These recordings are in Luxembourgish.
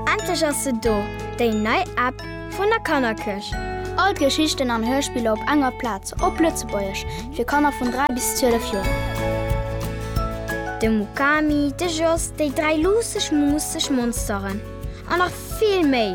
Endlech ass se do, déi nei App vun der Kannerkëscht! All d'Geschichten an Hörspiller op enger Plaz, op Lëtzebuergesch, fir Kanner vun 3 bis 12 Joer. De Mukami, de Jos, déi dräi luusseg, muusseg Monsteren an nach vill méi!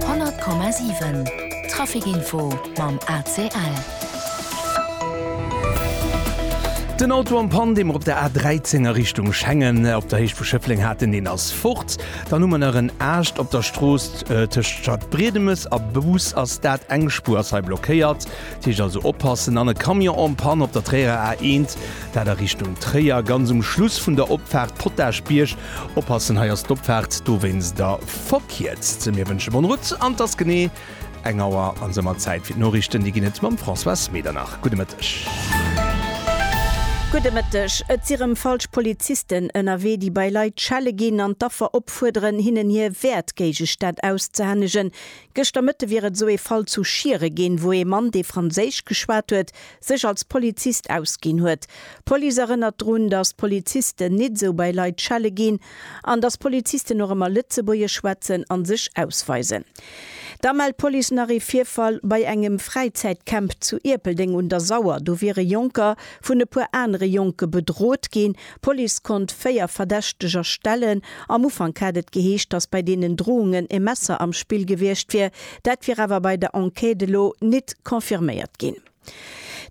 100,7 Traficinfo mam ACL. Den Auto am Pan, deem mer op der A13 a Richtung Schengen op der Héicht vu Schëffleng haten, deen ass fort. Dann hu mer nach en Aascht op der Strooss tëscht Stadbriedemes a Bous, ass dat. Eng Spuer ass hei blockéiert, dat heescht also oppassen. Dann e Camion en panne op der Tréierer A1, dat a Richtung Tréier, ganz um Schluss vun der Opfaart Potaschbierg. Oppassen, hei ass d'Opfaart, dowéinst da verkierzt. Mir wënsche bonne route an 't ass genee eng Auer an se mat Zäit fir d'Noriichten. Déi ginn et mam Françoise Medernach. Gudde Mëtteg. Gudde Mëtteg. Et si rëm falsch Polizisten ënnerwee, déi bei Leit schelle ginn an d'Affer opfuerderen, hinnen hir Wäertgéigestänn auszehännegen. Gëschter Mëtte wier et esou ee Fall zu Schiere ginn, wou ee Mann, dee Franséisch geschwat huet, sech als Polizist ausginn huet. D'Police erënnert drun, datt d'Polizisten nit esou bei Leit schelle ginn an datt d'Polizisten och ëmmer Lëtzebuergesch schwätzen an sech ausweisen. Da mellt d'Police nach ee Virfall bei engem Fräizäitcamp zu Ierpeldeng un der Sauer. Do wiere Jonker vun e puer anere Jonke bedrot ginn. D'Police konnt véier Verdächteger stellen. Am Ufank hat et geheescht, datt bei deenen Drohungen e Messer am Spill gewiescht wier. Dat wier awer bei der Enquête elo nit confirméiert ginn.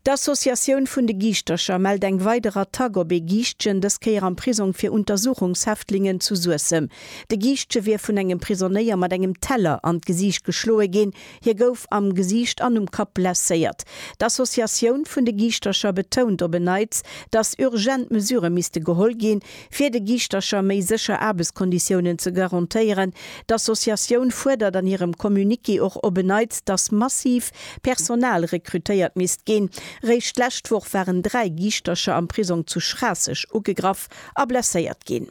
D'Associatioun vun de Giischtercher mellt eng weider Attack op ee Giischtgen, dës Kéier am Prisong fir Untersuchungshäftlingen zu Suessem. De Giischtge wier vun engem Prisonéier mat engem Teller an d'Gesiicht geschloe ginn. Hie gouf am Gesiicht an um Kapp blesséiert. D'Associatioun vun de Giischtercher betount op en Neits, datt urgent Mesurë misste geholl ginn, Fir de Giischtercher méi sécher Aarbechtskonditiounen ze garantéieren, d'Associatioun fuerdert an hirem Communiqué och op en Neits, dass massiv Personal rekrutéiert misst ginn. Eréischt d'lescht Woch waren dräi Giischtercher am Prisong zu Schraasseg ugegraff a blesséiert ginn.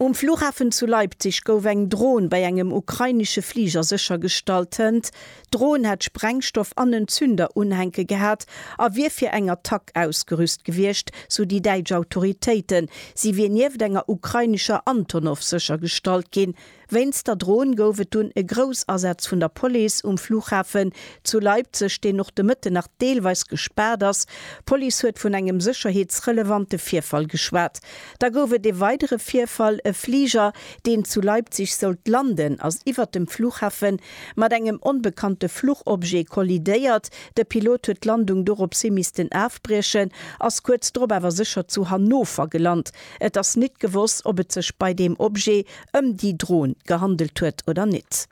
Um Flughafen zu Leipzig gouf eng Dron bei engem ukrainesche Fliger séchergestallt. D'Dron hätt Sprengstoff an en Zünder unhänke gehat a wier fir eng Attack ausgerüst gewiescht, sou déi däitsch Autoritéiten. Si wier nieft enger ukrainescher Antonov séchergestallt ginn. Wéinst der Dron gouf et dunn e Groussasaz vun der Police um Flughafen zu Leipzeg, deen och de Mëtten nach deelweis gespaart ass. D'Police huet vun engem sécherheetsrelevante Virfall geschwat. Da gouf et e weidere Virfall, E Fliger, deen zu Leipzig sollt landen, ass iwwert dem Flughafen mat engem onbekannte Fluchobjet kollidéiert. De Pilot huet d'Landung doropshi missten afbriechen, ass kuerz drop awer sécher zu Hannover gelant. Et ass nit gewosst, ob et sech bei deem Objet ëm déi Dron gehandelt huet oder nit.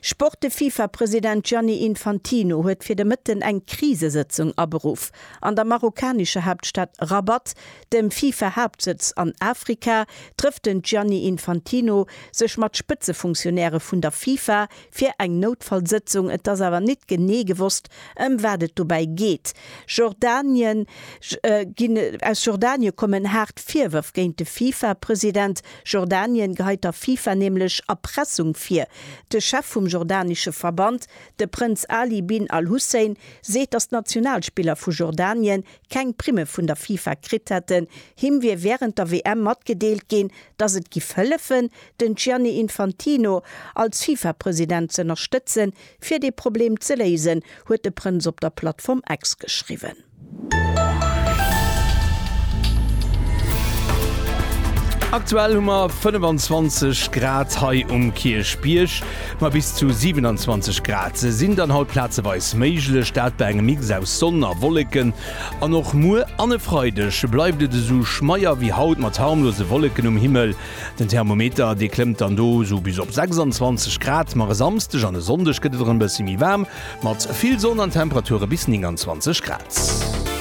Sport De Fifa-President Gianni Infantino huet fir de Mëtten eng Krisesëtzung aberuff. An der marokkanescher Haaptstad Rabat Dem FIFA-Haaptsëtz an Afrika trëfft den Gianni Infantino sech mat Spëtzefunktionäre vun der FIFA fir eng Noutfallsëtzung. Et ass awer nit genee gewosst, ëm wat et dobäi geet. Jordanien, Aus Jordanie kommen haart Virwërf géint de FIFA-President. Jordanien geheit der FIFA nämlech Erpressung vir. De Chef vum jordanesche Verband, de Prënz Ali bin al-Hussein, seet, datt d'Nationalspiller vu Jordanien keng Primme vun der FIFA kritt hätten. Him wier wärend der WM matgedeelt ginn, datt et giff hëllefen, den Gianni Infantino als FIFA-President z'ënnerstëtzen, fir dee Problem ze léisen, huet de Prënz op der Plattform X geschriwwen. Aktuell hu mer 25 Grad hei um Kierchbierg. Ma bis zu 27 Grad sinn dann haut plazeweis méiglech, dat bei engem Mix aus Sonn a Wolleken. An och muer an e Freideg bleift et esou schmeier wéi haut mat harmlose Wolleken um Himmel. Den Thermometer, dee klëmmt dann do esou bis op 26 Grad, ma e Samsdeg an e Sonndeg gëtt et erëm e bësse méi waarm mat vill Sonn an Temperature bis 29 Grad.